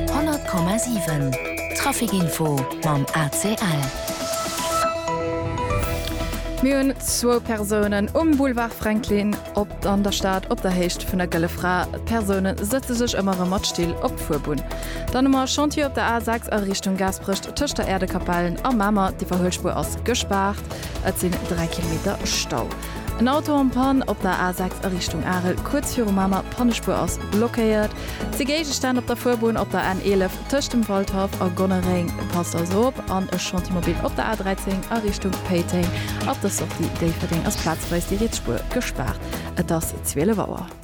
100,7 Trafic Info mam ACL. Mir hunn zwou Persounen um Boulevard Franklin op an der Stad op der Héicht vun der Gëlle Fra. D'Persoune sëtze sech ëmmer erëm mat Still op d'Fuerbunn. Dann hu mer e Chantier op der A6 a Richtung Gaasperech tëscht der Äerdekapellen a Mamer. Déi Verhuelspuer ass gespaart, et sinn 3 Kilometer Stau. En Auto en panne op der A6 a Richtung Arel, kuerz viru Mamer, Pannespuer ass blockéiert. Zwee Géigestänn op der Fuerbunn op der N11 tëscht dem Waldhaff a Gonnereng, passt also op. An e Chantier-Mobil op der A13 a Richtung Péiteng, ab der Sortie Déifferdeng ass plazweis déi riets Spuer gespaart. Et ass 12 Auer.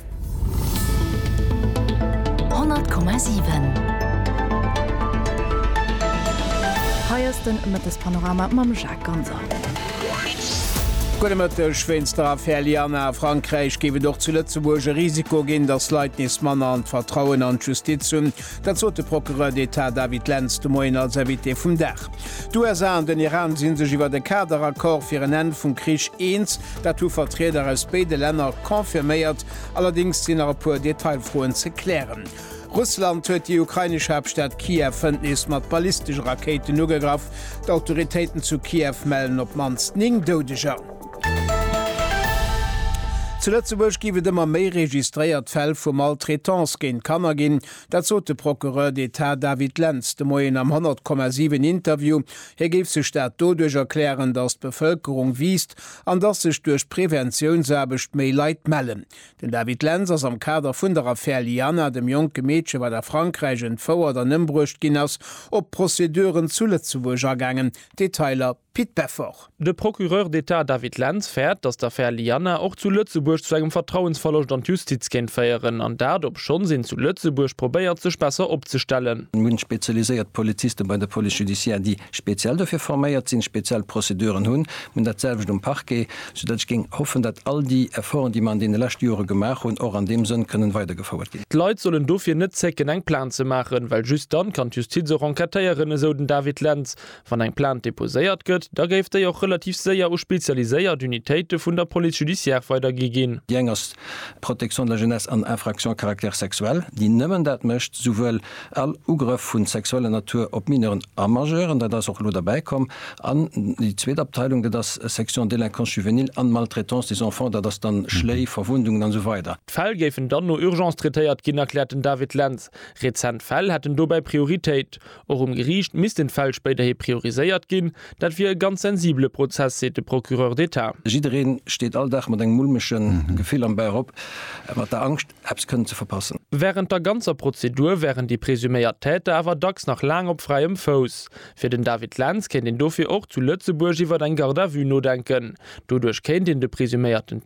100,7 Hei ass den Mëttespanorama mam Jacques Ganser. Gudde Mëtteg. Wéinst der Affär Lianna a Frankräich géif et och zu Lëtzebuerg e Risiko ginn, datt Leit nees manner an d'Vertrauen an d'Justiz hunn. Dat sot de Procureur d'Etat David Lenz de Moien als Invité vum Dag. D'USA an den Iran si sech iwwer e Kaderaccord fir en Enn vum Krich eens. Dat hu Vertrieder aus béide Länner confirméiert. Allerdéngs sinn nach e puer Detailfroen ze klären. Russland huet déi ukrainesch Haaptstad Kiew hënt nees mat ballistesche Rakéiten ugegraff. D'Autoritéiten zu Kiew mellen op d'mannst 9 Doudeger. Zu Lëtzebuerg géif et ëmmer méi registréiert Fäll vu Maltraitance géint Kanner ginn. Dat sot de Procureur d'Etat David Lentz de Moien am 100,7 Interview. Hie géif sech dat doduerch erklären, datt d'Bevëlkerung wiisst an datt sech duerch d'Preventiounsaarbecht méi Leit mellen. Den David Lentz ass am Kader vun der Affär Lianna, dem jonke Meedche wat a Frankräich entfouert an ëmbruecht ginn ass, op d'Prozeduren zu Lëtzebuerg agaangen. Detailer. Pit Beffort. De Procureur d'Etat David Lentz fäert, datt d'Affär Lianna och zu Lëtzebuerg zu engem Vertrauensverloscht an d'Justiz kéint féieren, an dat obschonns een zu Lëtzebuerg probéiert sech besser opzestellen. Mir hunn spezialiséiert Polizisten bei der Police judiciaire, déi speziell dofir forméiert sinn, speziell Prozeduren hunn. Mir hunn dat selwecht um Parquet, sou datt ech géing hoffen, datt all déi Efforten, déi mer an deene leschte Jore gemaach hunn, och an deem Sënn kënnen weidergefouert ginn. D'Leit sollen dofir net zécken eng Plainte ze maachen, well just dann kann d'Justiz och enquêtéieren, esou den David Lentz. Wann eng Plainte deposéiert gëtt, da géif déi och relativ séier u spezialiséiert Unitéite vun der Police judiciaire weidergi ginn. Déi eng ass d'Protection de la jeunesse an Infractions à caractère sexuel, déi nëmmen dat mécht, souwuel all Ugrëff vu sexueller Natur op Mineuren a Majeuren, dat ass och elo derbäi komm, an déi zweet Abteilung, dat ass Section délinquance juvénile an Maltraitance des enfants, dat ass dann Schléi, Verwundungen an esou weider. D'Fäll géifen dann no Urgence traitéiert ginn, erkläert den David Lentz. Rezent Fäll hätten dobäi Prioritéit. Och um Geriicht missten d'Fäll spéiderhi prioriséiert ginn. Dat wier e ganz sensibele Prozess, seet de Procureur d'État. Jiddereen steet all Dag mat engem mulmege Gefill am Bauch op, mat der Angscht, eppes kënnen ze verpassen. Wärend der ganzer Prozedur wären déi presuméiert Täter awer dacks nach laang op fräiem Fouss. Fir den David Lentz kéint een dofir och zu Lëtzebuerg iwwert eng Garde à vue nodenken. Doduerch kéint een de presuméierten.